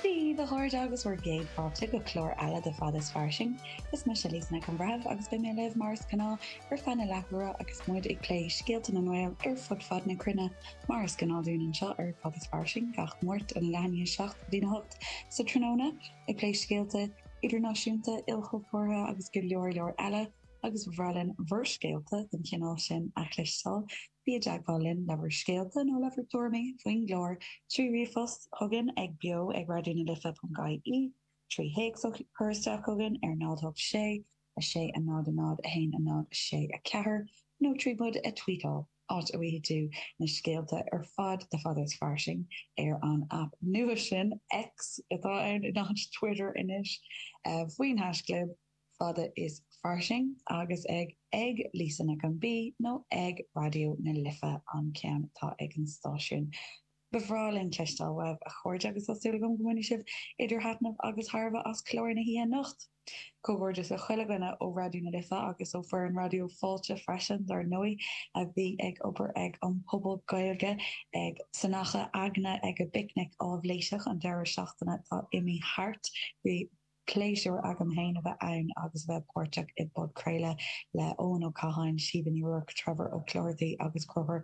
Dia dhaoibh a chairde agus bhur gcéad fáilte go clár eile de Fada is fairsing. Is mise Lisa Nic an Bhreithimh agus beidh mé libh mar is gnáth ar feadh na leathuaire agus muid ag plé scéalta na nGael ar fud fad na cruinne mar is gnáth dúinn anseo ar Fada is Fairsing gach Máirt ón leath i ndiaidh 7 go dtí 8 sa tráthnóna ag plé scéalta idirnáisiúnta, ilchultúrtha agus go leor leor eile agus ba bhreá linn bhur scéalta den chineál sin a chloisteáil. Bí i dteagmháil linn le bhur scéalta nó le bhur dtuairimí faoin gclár trí ríomhphost chugainn ag beo ag raidió na life ponc ie, trí théacs a chur isteach chugainn ar 0 8 6 6 a 0 a 0 1 a 0 6 4 nó trí muid a tweetáil, áit a bhfaighidh tú na scéalta ar fad de Fada is fairsing ar an aip nua sin, X atá ann in áit Twitter anois, faoin hashchlib. fada is fairsing agus ag ag Lisa Nic an B nó ag Raidió na Life an ceann atá ag an stáisiún. Ba bhreá linn cloisteáil uaibh, a chairde, agus tá súil agam go mbainfidh sibh idir thaitneamh agus thairbhe as clár na hoíche anocht. Comhghairdeas le chuile dhuine ó Raidió na Life agus ó fhoireann Raidió Fáilte freisin, dár ndóigh, a bhí ag obair ag an Puball Gaeilge ag san Achadh Aigne ag an bPicnic Aibhléiseach an deireadh seachtaine atá imithe thart. Bhí. Pléisiúr agam féin a bheith ann agus a bheith páirteach i bpodchraoladh le Eoin Ó Catháin, Síomha Ní Ruairc, Trevor Ó Clochartaigh agus Conchúr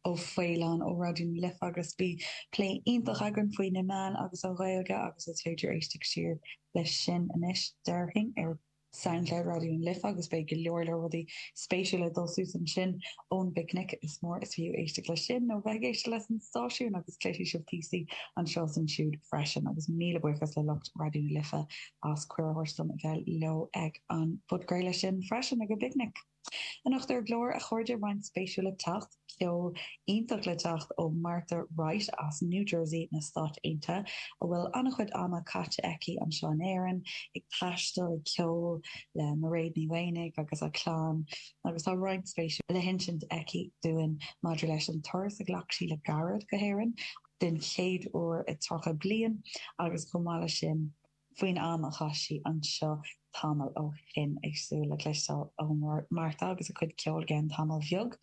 Ó Faoláin ó Raidió na Life agus bhí plé iontach againn faoi na meáin agus an Ghaeilge agus is féidir éisteacht siar leis sin anois, déarfainn, ar Soundcloud Raidió na Life agus beidh go leor leor rudaí spéisiúla ag dul suas ansin. ón bPicnic. Is mór is fiú éisteacht leis sin nó bheith ag éisteacht leis an stáisiún agus cloisfidh sibh píosaí anseo is ansiúd freisin. Agus míle buíochas le lucht Raidió na Life as cuireadh a thabhairt dom a bheith leo ag an phodchraoladh sin freisin, ag an bPicnic. Anocht ar an gclár, a chairde, roinnt spéisiúil le teacht, ceol iontach le teacht ó Martha Wright as New Jersey na Stáit Aontaithe, a bhfuil an-chuid ama caite aici anseo in Éirinn ag taisteal, ag ceol le Mairéad Ní Mhaonaigh agus a clann, agus tá roinnt spéisiúil le hinsint aici dúinn maidir leis an turas a ghlac sí le gairid go hÉirinn, den chéad uair i 30 bliain, agus chomh maith leis sin, faoin am a chaith sí anseo tamall ó shin, ag súil le cloisteáil ó Martha agus a cuid ceoil i gceann tamall bheag.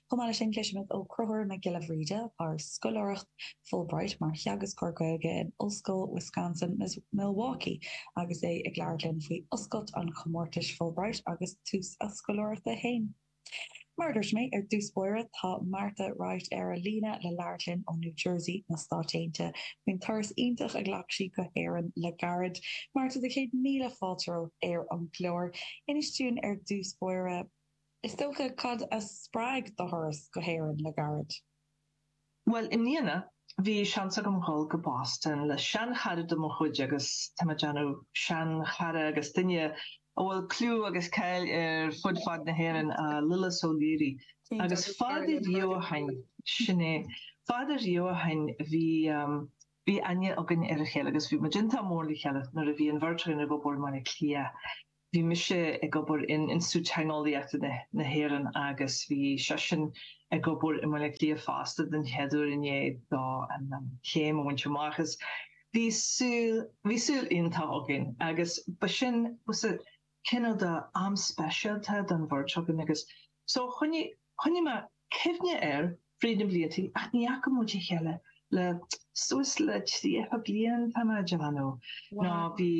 Chomh maith leis sin, cloisimid ó Chonchúr Mac Giolla Bhríde, atá ar scoláireacht Fulbright mar theagascóir Gaeilge in Ollscoil Wisconsin, Milwaukee agus é ag labhairt linn faoi oscailt an chomórtais Fulbright agus tús a scoláireachta féin. Mar a dúirt mé ar dtús báire, tá Martha Wright ar an líne le labhairt linn ó New Jersey, na Stáit Aontaithe faoin turas iontach a ghlac sí go hÉirinn le gairid. Martha, do chéad míle fáilte romhat ar an gclár. Inis dúinn ar dtús báire, is dócha, cad a spreag do thuras go hÉirinn le gairid? Bhuel, i mbliana, bhí seans agam dhul go Boston le seanchara de mo chuid agus tá mé ag déanamh seanchara agus duine a bhfuil clú agus cáil air fud fad na hÉireann, Lillis Ó Laoire. Agus fada riamh ó shin, sin é, fada riamh ó shin, bhí, bhí aithne againn ar a chéile agus bhí muid iontach mór le chéile nuair a bhí an bheirt againn ag obair i mBaile Átha Cliath. bhí mise ag obair in Institiúid Teangeolaíochta na hÉireann agus bhí seisean ag obair i mBaile Átha Cliath fosta den chéad uair i ndiaidh dó an chéim a bhaint amach is bhí saol, bhí saol iontach againn agus ba sin, sea, cineál de am speisialta don bheirt againn agus so choinnigh, choinnigh mé cuimhne air fríd na blianta ach ní fhaca muid a chéile le suas le 30 bliain tá mé ag déanamh, nó bhí.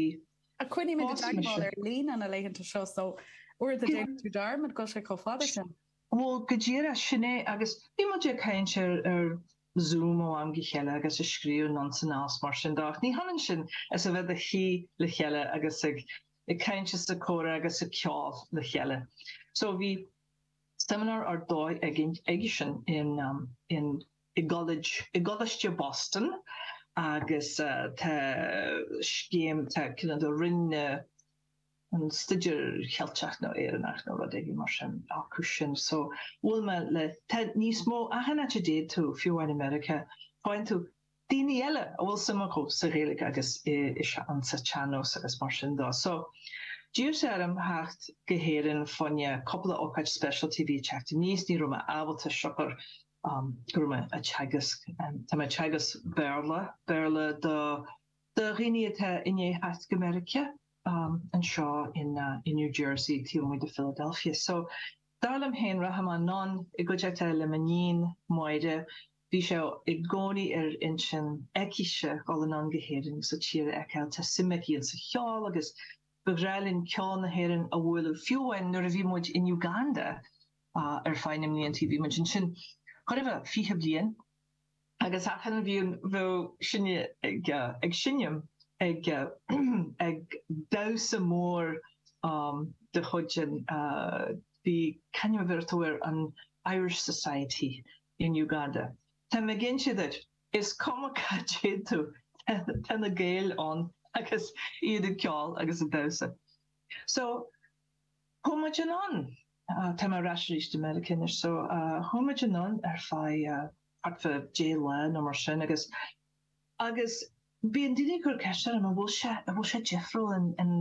ach coinnímid i dteagmháil ar líne na laethanta seo so uaireanta déanann tú dearmad go bhfuil sé chomh fada sin. Bhuel go díreach sin é agus bhí muid ag caint ar ar Zoom ó am go chéile agus ag scríobh anonn is anall is mar sin de ach ní hionann sin is a bheith do shuí le chéile agus ag ag caint is ag comhrá agus ag ceol le chéile so bhí seimineár ar dóigh againn aigesean in in i gCo, i gColáiste Boston agus tá scéim, tá cineál de Roinn na, an Staidéir Cheilteach nó Éireannach nó rud éigin mar sin acusan so bhuail mé le, tá níos mó, achan áit a dtéid tú, fiú amháin i Meiriceá, faigheann tú daoine eile a bhfuil suim acu sa Ghaeilge agus insa tsean-nós agus mar sin de. So d'iarr sé orm theacht go hÉirinn fá choinne cupla ócáid speisialta a bhí ag teacht aníos, ní raibh mé ábalta siocair go raibh mé ag teagasc. Tá mé ag teagasc Béarla, Béarla do dhaoine atá i ndiaidh theacht go Meiriceá, anseo in New Jersey, taobh amuigh de Philadelphia. So, dar liom féin, rachaidh mé anonn i gcuideachta le m'iníon, Máire, bhí sé i gcónaí ar intinn aicise dhul anonn go hÉirinn agus an tír a fheiceáil. Tá suim aici insa cheol agus ba ghnách linn ceol na hÉireann a bhualadh, fiú amháin nuair a bhí muid in Uganda, Ar feadh na mblianta bhí muid ansin, chóir a bheith, fiche bliain. Agus achan bhliain bheadh sinne ag seinm ag damhsa mór de chuid an, bhí, c'ainm a bheireadh tú air, an Irish Society in Uganda. Tá mé ag inse duit, is cuma cá dtéann tú, tá na Gaeil ann agus iad ag ceol agus ag damhsa. So. Chuaigh muid anonn, tá mé ar ais arís i Meiriceá anois so, chuaigh muid anonn ar feadh thart fá 10 lá nó mar sin agus, agus bíonn daoine ag cur ceist orm, an bhfuil sé, an bhfuil sé difriúil, an, an,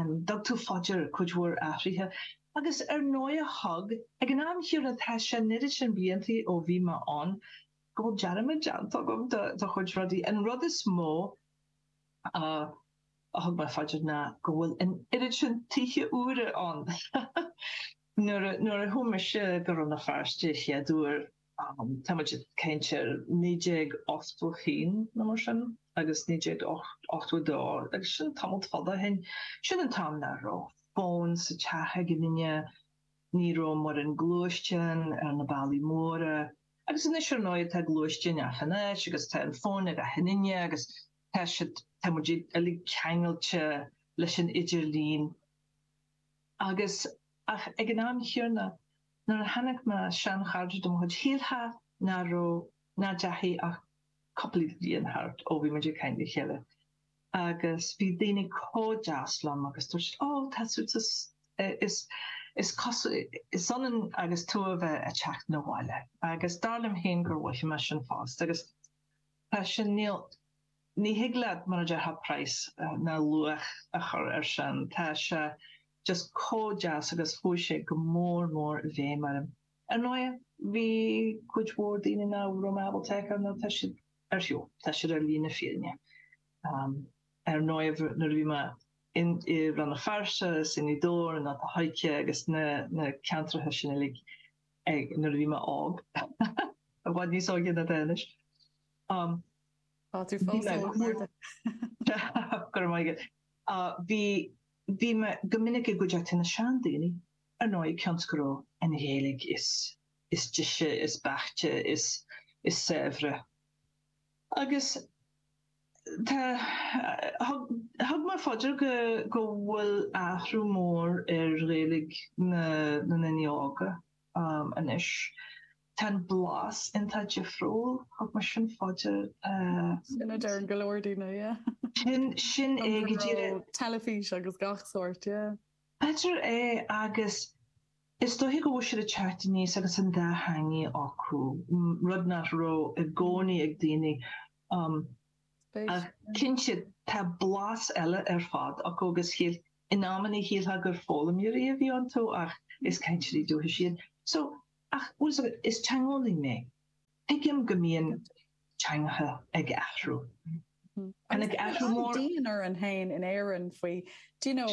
an dtug tú fá dear cuid mhór athruithe? Agus ar ndóighe thug, ag an am chéanna tá sé an oiread sin bliantaí ó bhí mé ann go bhfuil dearmad déanta agam de, de chuid rudaí. An rud is mó a. a thug mé fá dear ná go bhfuil an oiread sin tithe úra ann. Nuair a chuaigh mise go Rann na Feirste a chéad uair, tá muid ag caint ar 1981 nó mar sin, agus 1982, agus sin tamall fada ó shin, sin an t-am nach raibh fón sa teach ag aon duine, ní raibh mórán gluaisteán ar na bealaí móra, agus anois ar ndóigh tá gluaisteáin achan áit agus tá an fón ag achan duine agus. Tá siad, tá muid uilig ceangailte leis an idirlíon agus, ach ag an am chéanna, nuair a chonaic mé seanchairde de mo chuid, shílfeá nach raibh, nach deachaigh ach cúpla bliain thart ó bhí muid ag caint le chéile agus bhí daoine comh deas liom agus dúirt siad, oh, tá tú, is, is cosúil, is ionann agus tú a bheith a teacht na bhaile agus dar liom féin gur mhothaigh mé sin fosta agus. Tá sin, ní, ní thig leat, mar a déarfá, praghas ná luach a chur ar sin. Tá sé just comh deas agus chuaigh sé go mór mór i bhfeidhm orm. Ar ndóighe, bhí cuid mhór daoine nach raibh mé ábalta a fheiceáil nó tá siad ar shiúl, tá siad ar shlí na fírinne. Ar ndóighe, nuair a bhí mé in, i Rann na Feirste is i nGaoth Dobhair i nGort an Choirce agus na na ceantracha sin uilig, ag nuair a bhí mé óg. I bhfad níos óige ná tá anois. Um. Tá tú fós óg Marta. Go raibh maith agat. Bhí bhí mé go minic i gcuideachta na seandaoine ar ndóigh cionn is go raibh an Ghaeilge is is deise is beaichte is is saibhre acu Thug mé fá dear go bhfuil athrú mór ar Ghaeilge na ndaoine óga anois. Tá an blas iontach difriúil. Thug mé sin fá dear. Sin a deireann go leor daoine, yeah. Sin é go díreach. Teilifís agus gach sórt, yeah. B'fhéidir é agus is dóiche go bhfuil siad ag teacht aníos agus an dá theangaidh acu, rud nach raibh i gcónaí ag daoine Ach cinnte tá blas eile ar fad acu agus in amannaí shílfeá gur foghlaimeoirí a bhí iontu ach is cainteoirí dúchais iad. So, ach is teangeolaí mé, tuigim go mbíonn teangacha ag athrú. Agus tá an-dian orainn féin in Éirinn faoi, do you know,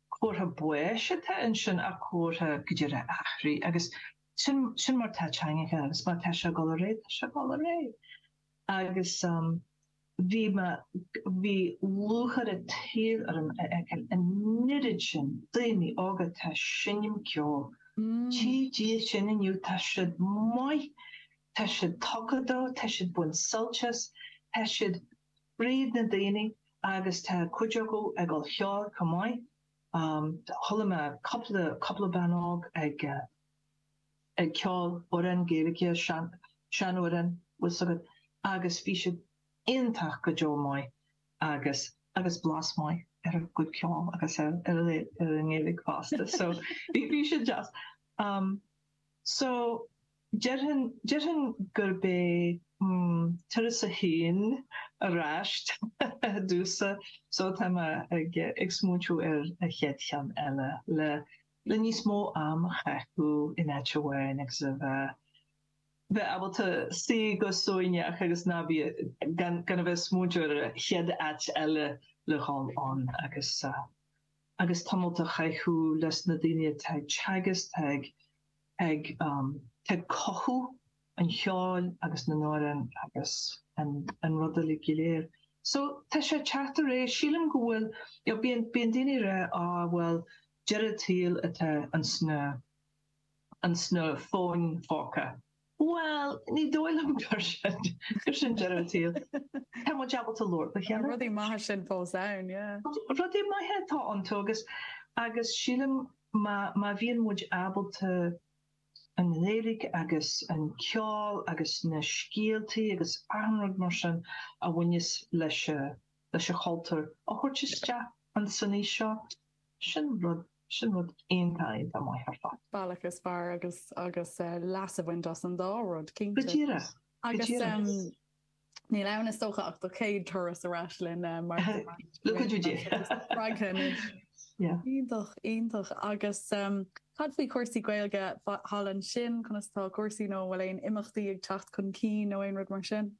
comhartha baois atá ansin ach comhartha go bhfuil ré ag athrú agus sin sin mar tá teangacha agus mar tá sé ag dul ar aghaidh tá sé ag dul ar aghaidh agus bhí mé bhí lúcháir an domhain orm a fheiceáil an oiread sin daoine óga atá ag seinm ceoil tchí Dia sin inniu tá siad maith tá siad tugtha dó tá siad ag baint suilt as tá siad fríd na daoine agus tá cuid acu ag gabháil cheoil chomh maith. Chuala mé cúpla, cúpla bean óg ag, ag ceol amhrán Gaeilge, sean, sean amhrán, bhfuil 's agat, agus bhí siad iontach go deo maith agus, agus blas maith ar a gcuid ceoil agus ar, ar a, ar a nGaeilge fosta so bhí, bhí sé deas. So. Déarfainn gurbh é turas a haon ar ais ar dtús, só tá mé ag smaointiú ar an chéad cheann eile, le níos mó am a chaitheamh in áit amháin agus a bheith bheith ábalta suí go suaimhneach agus ná bí, gan a bheith ag smaointiú ar an chéad áit eile le dhul ann agus agus tamalt a chaitheamh leis na daoine atá ag teagasc, atá ag ag atá ag cothú an cheoil agus na n-amhrán agus an an rud uilig go léir. So tá sé ag teacht ar aghaidh, sílim go bhfuil, you know bíonn bíonn daoine ag rá á bhuel deireadh an tsaoil atá ins na ins na fóin póca. Bhuel ní dóigh liom gur sin gur sin deireadh an tsaoil. Tá muid ábalta labhairt le chéile. Tá rudaí maithe sin fós ann, yeah. Rudaí maithe atá iontu agus agus sílim Má bhíonn muid ábalta an Ghaeilge agus an ceol agus na scéaltaí agus achan rud mar sin a bhaineas leis leis an chultúr a thabhairt isteach ins an aois seo, sin rud, sin rud iontach, iontach maith ar fad. bealach is fearr agus agus leas a bhaint as an dá rud, cinnte. Go díreach, go díreach. Níl ann is dócha ach do chéad turas ar ais linn mar tá muid spreagtha anois. Iontach, iontach. Agus cad faoi chúrsaí Gaeilge? Thall ansin conas atá cúrsaí nó an bhfuil aon imeachtaí ag teacht chun cinn nó aon rud mar sin?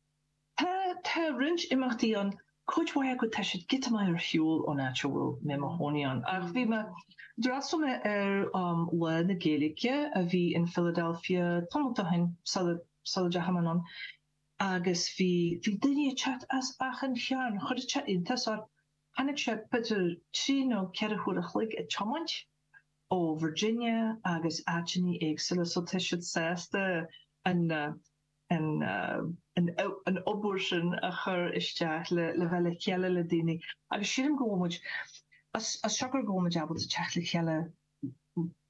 Tá roinnt imeachtaí ann Cuid mhaith acu, tá siad giota maith ar shiúl ón áit a bhfuil mé i mo chónaí ann. Ach bhí mé, d'fhreastal mé ar Lá na Gaeilge a bhí in Philadelphia tamalt ó shin, sula, sula deachaigh mé anonn, agus bhí, bhí daoine ag teacht as achan cearn. Chuir sé iontas orm. Tháinig siad, b'fhéidir trí nó ceithre huaire a chloig ag tiomáint, ó Virginia agus áiteanna éagsúla. So tá siad sásta an. an obair sin a chur isteach le bheith le chéile le daoine agus sílim go bhfuil muid as siocair go bhfuil muid ábalta teacht le chéile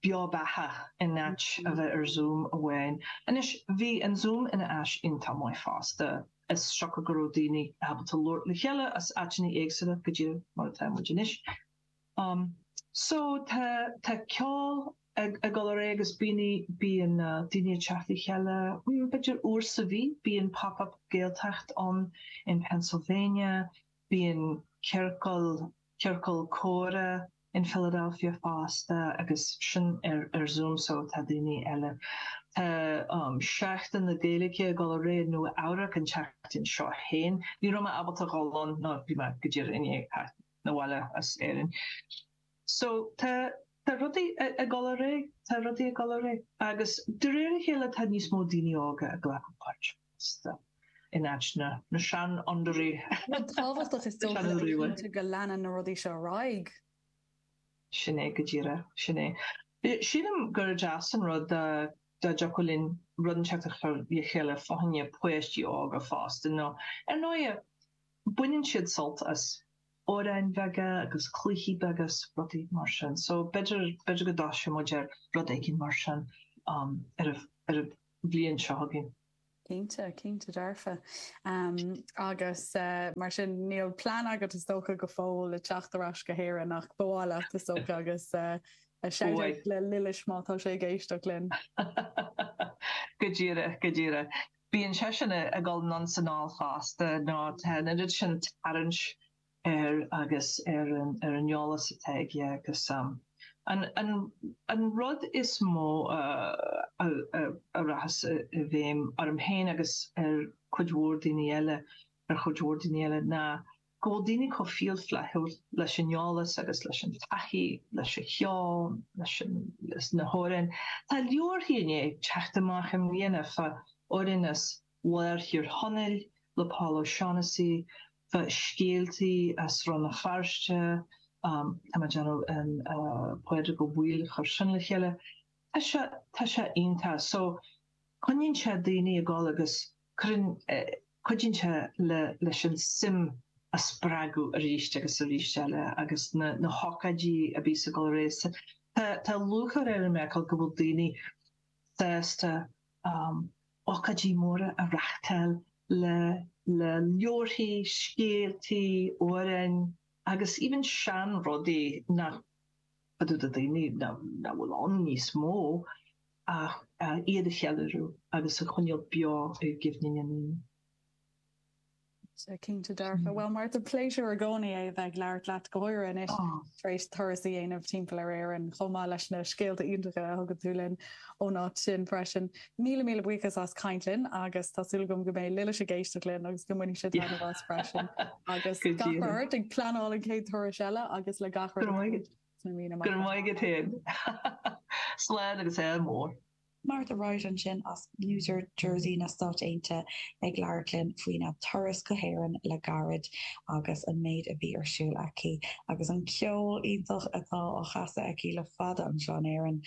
beo beathach in áit a bheith ar Zoom amháin. Anois bhí an Zoom ina áis iontach maith fosta as siocair go raibh daoine ábalta labhairt le chéile as áiteanna éagsúla go díreach mar atá muid anois. Um so tá tá ceol ag ag dul ar aghaidh agus bíonn bíonn daoine ag teacht le chéile b'fhéidir uair sa mhí, bíonn Pop-Up Gaeltacht ann in Pennsylvania, bíonn ciorcal ciorcal comhrá in Philadelphia fosta agus sin ar ar Zoom so tá daoine eile. Tá um Seachtain na Gaeilge ag dul ar aghaidh in Nua Eabhrac an tseachtain seo féin. Ní raibh mé ábalta dhul ann nó bhí mé go díreach i ndiaidh theacht. 'na bhaile as Éirinn. So, tá, tá rudaí ag dul ar aghaidh, tá rudaí ag dul ar aghaidh. Agus de réir a chéile tá níos mó daoine óga ag glacadh páirt fosta, in áit na, na seanfhondúirí. Rud tábhachtach is dócha le cinntiú go leanann na rudaí seo ar aghaidh. Sin é go díreach, sin é. Sílim gur deas an rud dá, dá dtiocfadh linn rud inteacht a chur le chéile fá choinne páistí óga fosta, nó ar ndóighe, baineann siad sult as amhráin bheaga agus cluichí beaga is rudaí mar sin so b'fhéidir, b'fhéidir go dtoiseoidh muid ar rud éigin mar sin ar an bhliain seo chugainn. Cinnte, cinnte dearfa. Agus mar sin níl plean agat is dócha go fóill le teacht ar ais go hÉirinn ach ba mhaith leat is dócha agus shout out le Lillis má tá sé ag éisteacht linn. Go díreach, go díreach. Bíonn seisean ag dul anonn is anall fosta, nó tá an oiread sin tarraingt air agus ar an eolas atá aige agus an rud is mó a rachas i bhfeidhm orm féin agus ar chuid mhór daoine eile, ar chuid mhór daoine eile, ná. Go bhfuil daoine chomh fial flaithiúil leis an eolas agus leis an taithí, leis an cheol, leis na hamhráin, tá leabharthaí i ndiaidh teacht amach i mbliana fá amhráin as lár Thír Chonaill le Paul O'Shaughnessy, fá scéaltaí as Rann na Feirste, tá mé déanamh, an Pádraig Ó Baoill a chuir sin le chéile, tá sé, tá sé iontach. So, coinníonn sé daoine ag dul agus Cuireann cuidíonn sé le leis an suim a spreagadh arís agus arís eile agus na hócáidí a bhíos ag dul ar aghaidh so tá tá lúcháir orainn i Meiriceá go bhfuil daoine sásta ócáidí móra a reáchtáil le le leabharthaí, scéaltaí, amhráin agus even seanrudaí a taifeadadh de dhaoine nach bhfuil ann níos mó. ach iad a cheiliúradh agus a choinneáil beo i gcuimhne na ndaoine. Cinnte dearfa. Bhuel, Martha, pléisiúr i gcónaí é a bheith ag labhairt leat. Go háirithe anois tar éis turas a dhéanamh timpeall ar Éirinn, chomh maith leis na scéalta iontacha a thugann tú linn ón áit sin freisin. Míle míle buíochas as caint linn agus tá súil agam go mbeidh Lilis ag éisteacht linn agus go mbainfidh sé taitneamh as freisin. Agus gach rath ort ag pleanáil an chéad turais eile agus le gach rud. Sna míonna amach romhat. Go raibh maith agat féin. Slán agus Ádh mór. Martha Wright ansin as New Jersey na Stáit Aontaithe ag labhairt linn faoina turas go hÉirinn le gairid agus an méid a bhí ar siúl aici agus an ceol iontach atá á chasadh aici le fada anseo in Éirinn.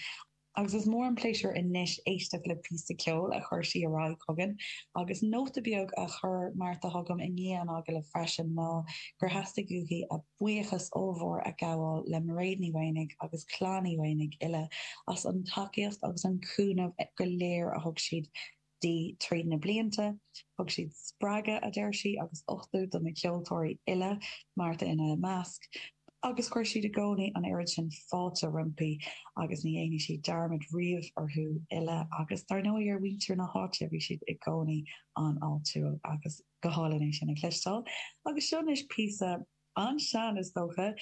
agus is mór an pléisiúr anois éisteacht le píosa ceoil a chuir sí ar aghaidh chugainn, agus nóta beag a chuir Martha chugam i ndiaidh an agallaimh freisin ná gur theastaigh uaithi a buíochas ollmhór a ghabháil le Mairéad Ní Mhaonaigh agus Clann Uí Mhaonaigh uile as an tacaíocht agus an cúnamh go léir a thug siad di trí na blianta. Thug siad spreagadh, a deir sí, agus uchtú do na ceoltóirí uile, Martha ina measc, agus chuir siad i gcónaí an oiread sin fáilte roimpi agus ní dhéanfaidh sí dearmad riamh orthu uile agus dar ndóigh ar mhuintir na háite, bhí siad i gcónaí an-fháiltiúil agus go hálainn é sin a chloisteáil. Agus seo anois píosa. An-sean, is dócha,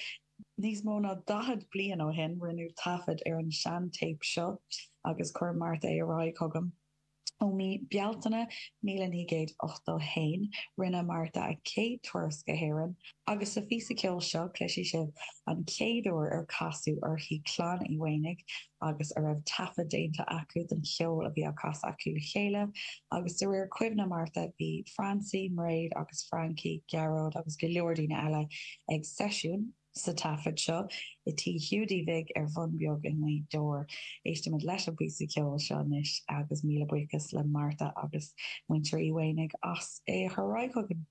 níos mó ná daichead bliain ó shin, rinneadh taifead ar an seantéip seo, agus chuir Martha é ar aghaidh chugam. Ó mhí Bealtaine míle naoi gcéad ochtó haon, rinne Martha a céad turas go hÉirinn, agus sa phíosa ceoil seo, cloisfidh sibh an chéad uair ar casadh uirthi Clann Uí Mhaonaigh, agus a raibh taifead déanta acu den cheol a bhí á chasadh acu le chéile, agus de réir cuimhne Martha, bhí Francie, Mairéad agus Frankie, Gearóid agus go leor daoine eile ag seisiún, sa taifead seo, i Tí Hiúdaí Bhig ar Bhun Beag i nGaoth Dobhair. Éistimis leis an bpíosa ceoil seo anois, agus míle buíochas le Martha agus Muintir Uí Mhaonaigh as é a chur ar aghaidh chugainn.